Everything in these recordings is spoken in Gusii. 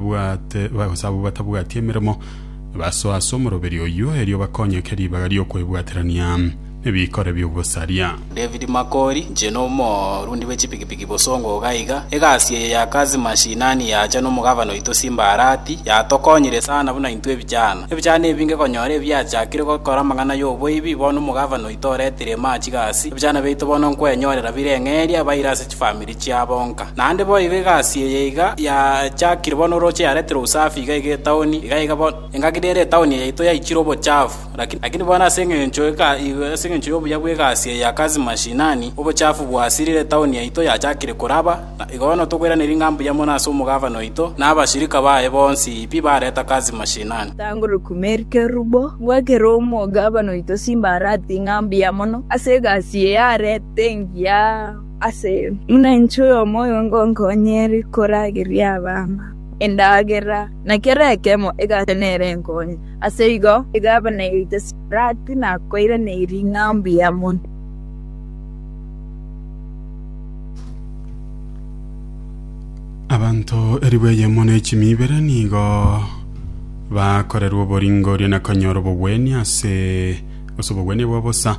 Bwate, gose abwo batabwati emeremo, basoe ase omoroberio oyio, erio bakonyeke ribaga ri'okwebwaterania nebikore bi'ogosaria. David Makori, Inche n'omorundi bwe chipikipiki bosongo iga iga. Egasi eye ya kazi mashinani yacha n'omogavana oito Simba Arati, yatokonyire sana buna intwe ebichana. Ebichana ebinge konyora ebiachakire gokora amang'ana y'oboibi, bono omogavana oito oretire ime aa chigasi, ebichana biaito bono nkwenyorera bire ng'eria, baire ase chifamiri chiabo nka. Naende boigo egasi eye iga yachakire bono oroche yareterwe usafi iga iga etaoni iga iga bono. Engaki nere etaoni yaito yaichire obochafu, lakini lakini bono ase engencho eka ase engencho y'obuya bw'egasi eye ya kazi mashinani, obochafu bwasirire etaoni yaito yachakire koraba, na igo bono tokoiraneria ng'a mbuya mono ase omogavana oito na abashirika baye bonsi pi bareta kazi mashinani. Tanguruku Mary Kerubo, ngoakera omogavana oito Simba Arati ng'a mbuya mono ase egasi eye arete engiya. ase buna inche oyomo oyo ngonkonyere korageria abana endagera, na kera ekemo egate nere enkonye. Ase igo egavana yaito Sipirati nakoiraneire ring'ana mbuya mono. Abanto elifu eyemo ne chimi ibere nigo bakorerwa oboringoria na konyora obogwenia ase ase obogwenia bwa bosa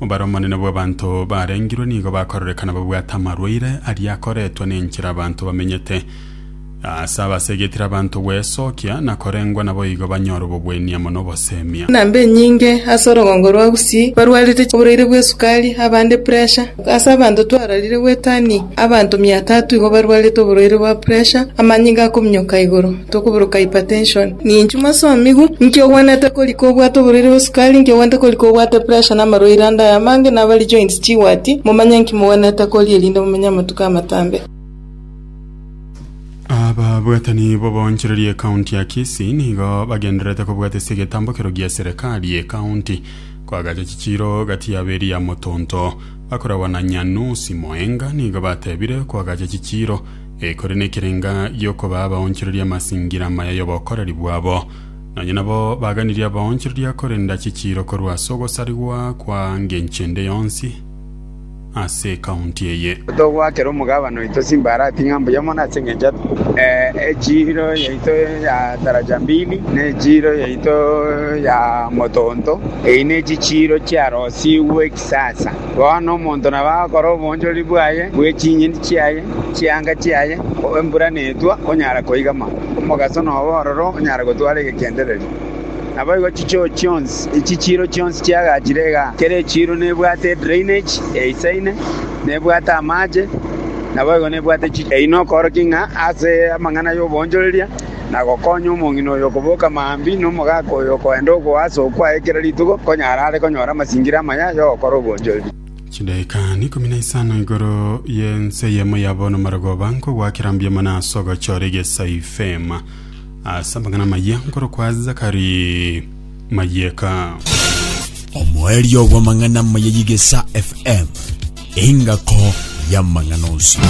Bare omonene bw'abanto barengirwe nigo bakororekana babwate amarwaire aria akoretwe nenchera abanto bamenyete. Aase abasegetire abanto gwesokia na korengwa naboigo banyore obobw'eni amo nobosemia. Enamba enyinge ase orogongo rwa Gusii barwarete oboraire bw'esukari, abande puresha. Ase abanto twararire gwetania, abanto mia tatu igo barwarete oboraire bwa puresha, amanyinga akominyoka igoro. Tokoburuka hypertension, ninchwe masomigu, inki ogwenerete korika obwate oborwaire bwe sukari, inki ogwenerete korika obwate pressure na amarwaire ande aya amange, na abare joints chigwati, momanye inki mogwenerete koria erinde momenye amatuko amatambe. Ababwatani b'oboonchoreria ekaunti ya Kisii nigo bagendererete kobwata ase egetambo ekero gia serikali y'ekaunti koagacha chichiiro gati yabo eria ya motonto. Bakoragwa na Nyanusi Moenga nigo batebire koagacha chichiiro ekore nekerenga gi'okobaa abaonchoreria amasingira amaya y'obokoreri bwabo. Nonya nabo baganirie abaonchoreria korenda chichiiro korwa ase ogosarigwa kwa ngencho ende yonsi ase ekaunti eye. Togoakera omogabane oito simba arati ng'a mbuya mono ase engencho y'echiiro yaito ya taraja mbili, na echiiro yaito ya motonto, eyi nechichiiro chiarosigwe Sasa, bono omonto nabo agokora obonchoreri bwaye bwe chinyeni chiaye, chianga chiaye, embura netwa, onyara koigama, omogaso nobe ororo, onyara gotwara egegendereri. Naboigo chichoo chionsi, echi chiiro chionsi chiagachire iga, kera echiiro nebwate edrainage eisaine, nebwate amache, naboigo nebwate chi. Eyi nokoorokia ng'a ase amang'ana y'obonchoreria. na gokonya omong'ina oyo okoboka maambia, na omogaka oyo okoenda ogoa ase okwo aye kera rituko, konya are are konyora amasingira amaya y'ogokora obwonchoreria. Chidaeka ikomi na isano igoro y'ense eyemo yabo nomarogoba nkogwakera mbuya mono ase ogochora egesa ifema ase amang'ana amayia nkorokwa Zakari Mayeka. Omoerio bw'amang'ana amaya y'egesa FM, engako y'amang'ana onsi.